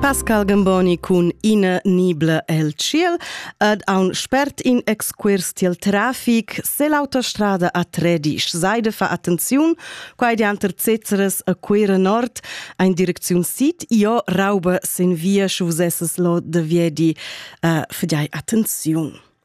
Pascal Gamboni cun ina nibla el tschiel ed aun spert in excuors tiel trafic sell'autostrada a Tredisch. Seide fa attenziun, quai dianter Cezeres a Cuira Nord, ein Direktion Sid, io rauba sin via schu vusesses lo de viedi. Uh, fidai attenziun.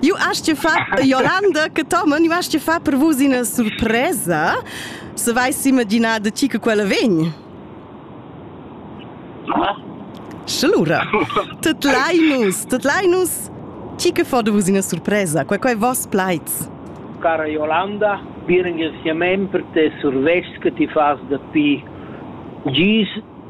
Ju hast dir fa Jolanda che Tomen, ju hast dir fa per vus ina surpresa, se vais imaginar de ti che quella vegn. Schlura. Tut leinus, tut leinus. Ti che fa de vus ina surpresa, quei quei vos plaids. Cara Jolanda, bir ringraziament per te survest che ti fas da pi. Gis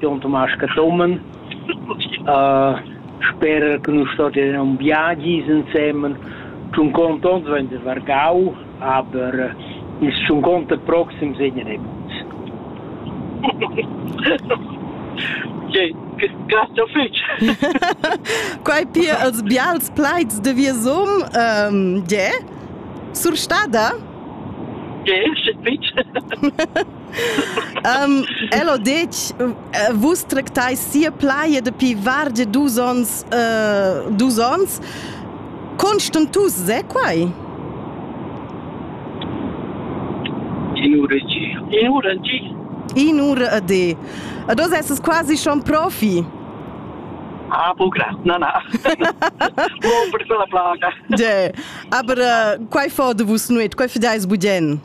Jon Tomasz Cathomen. Sper che nus stovien aunc viagis ensemen, sun contents d'vegnir vargau, aber ils sun conter proxims vegnan ei buc. Okay, grazie fetg. Quai pia els bials plaids de Viesum, um, je? Surstada? Je, sche fetg. um, el ho detg vus tractais sia plaja dapi vargia dus ons uh, dus ons constantus è quai in ura in ura di in ura de e dos esses quasi schon profi Ah, bugra, na, na. Mon per quella plaga. De, aber uh, quai fo de vus nuet, quai fidais budien?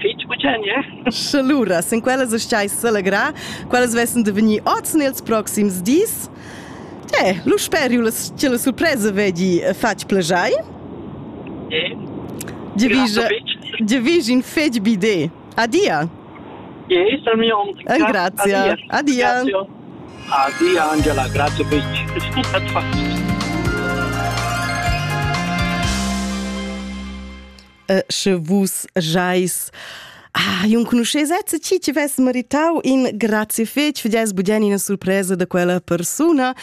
fitg bucenia. Sche lura, sin quellas stai selegrar, quellas vessen de vegnir oz nels proxims dis. Eh, lu speriu che la surpresa vegli fatg plajai. Eh. Divisa, divisa in fetg bide. Adia. Eh, sal mio om. Eh, grazie. Adia. Adia, Angela, grazie fitch. sche vus jais Ah, io conoscesesse ti tivesse meritau in grazie fetch für das budien in surpresa de quella persona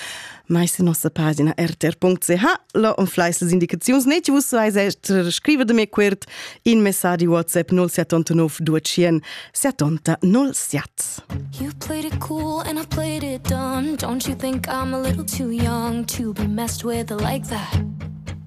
mais in nossa pagina rtr.ch lo on fleis les indicaziuns ne vus vais esser scrive de me quert in messaggi whatsapp 0789 200 70 07 You played it cool and I played it dumb Don't you think I'm a little too young to be messed with like that